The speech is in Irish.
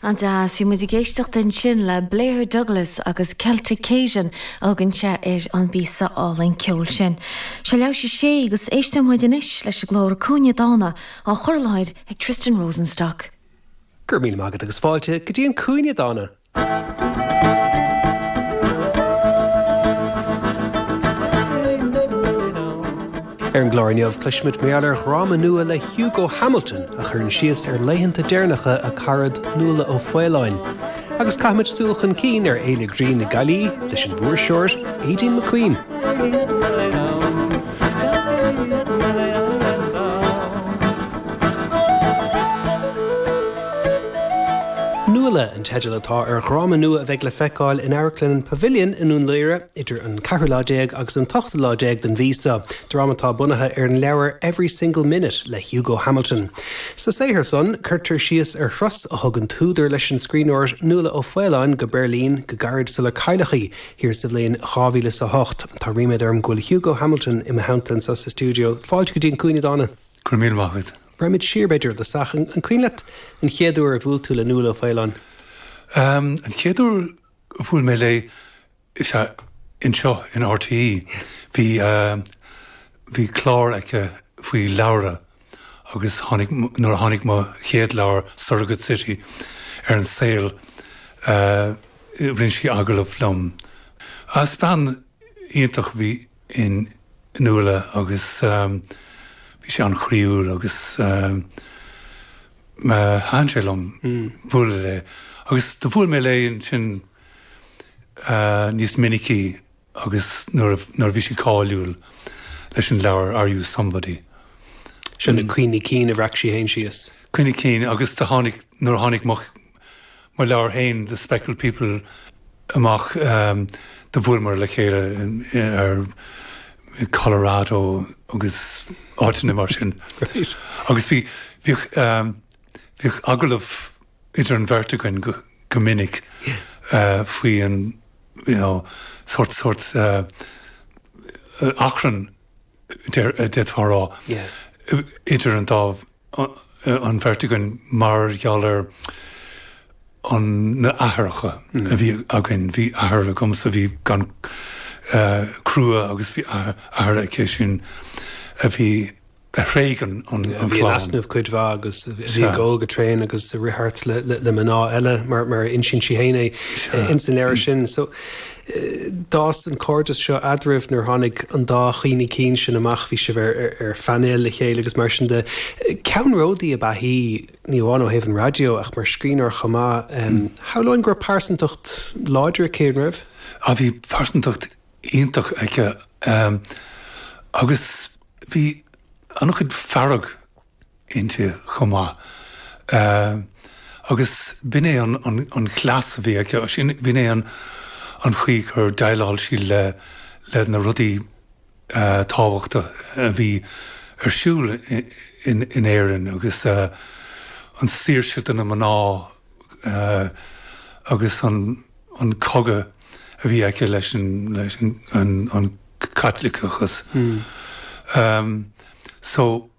An-deas, bhí muid ag éisteacht ansin le Blair Douglas agus Celtic Cajun a thugann sé ar an bpíosa álainn ceoil sin. Seo Leath tar éis a sé agus éisteoidh muid anois leis an gclár An Cúinne Dána á chur i láthair ag Tristan Rosenstock. Go raibh míle maith agat agus fáilte go dtí an Cúinne Dána! Ar an gclár inniu, cloisfimid mar gheall ar dhráma nua le Hugo Hamilton a chuireann síos ar laethanta deireanacha a carad Nuala O'Faolain, agus caithfimid súil chun cinn ar Fhéile Grinn na Gaillimhe leis an bhfuirseoir Aideen McQueen. Nuala an teideal atá ar dhráma nua a bheidh le feiceáil in Amharclann an Pavilion i nDún Laoghaire idir an ceathrú lá déag agus an t-ochtú lá déag den mhí seo, dráma atá bunaithe ar an leabhar Every Single Minute le Hugo Hamilton. Sa saothar san, cuirtear síos ar thuras a thug an t-údar leis an scríbhneoir Nuala O'Faolain go Beirlín go gairid sular cailleadh í, thiar sa bhliain dhá mhíle is a hocht. Tá ríméad orm go bhfuil Hugo Hamilton i mo theannta anseo sa stiúideo. Fáilte go dtí An Cúinne Dána! Go raibh míle maith agat. Rachaimid siar, b'fhéidir, go dtí an tosach, an cuimhin leat an chéad uair a bhuail tú le Nuala O'Faolain? An chéad uair a bhuail mé léi is ea anseo in RTÉ. Bhí bhí clár aici faoi leabhra agus tháinig nuair a tháinig mo chéad leabhar Surrogate City ar an saol rinne sí agallamh liom. Agus bean iontach a bhí. i Nuala agus bhí sí an-chroíúil agus thaitin sé liom bualadh léi agus do bhuail mé léi ansin níos minicí agus nuair a bhí sí cáiliúil leis an leabhar Are You Somebody? Sin na cuimhní cinn a bhreac sí féin síos. Cuimhní cinn agus do tháinig, nuair a tháinig mo mo leabhar féin The Speckled People amach do bhuaileamar le chéile ar Colorado agus áiteanna mar sin agus bhí bhíodh bhíodh agallamh idir an bheirt againn go minic faoi an you know sórt sórt achrann d'fhéadfá a rá, idir an dá, an bheirt againn mar gheall ar an, na athaireacha a bhí againn. Bhí athair agamsa a bhí an, eh, crua agus bhí athair aici sin a bhí a thréig an clann. Bhí in easnamh cuid mhaith agus bhí ag ól go tréan agus ag rith thart le mná eile mar mar a insíonn sí fhéin é ins an leabhar sin. So. D'fhás an cairdeas seo eadraibh nuair tháinig an dá cheann de na cinn sin amach, bhí sibh ar phainéal le chéile agus mar sin de. Ceannródaí ab ea í, ní amháin ó thaobh an raidió ach mar scríbhneoir chomh maith. Shamhlóinn go raibh pearsantacht láidir aici, an raibh? Á bhí pearsantacht iontach aici agus bhí an-chuid fearg inti chomh maith agus b'in é an cleas a bhí aici, b'in é an chaoi gur dhéileáil sí le na rudaí tábhachtacha a bhí ar siúl in Éirinn agus an saoirse do na mná agus an cogadh a bhí aici leis an Caitliceachas. So.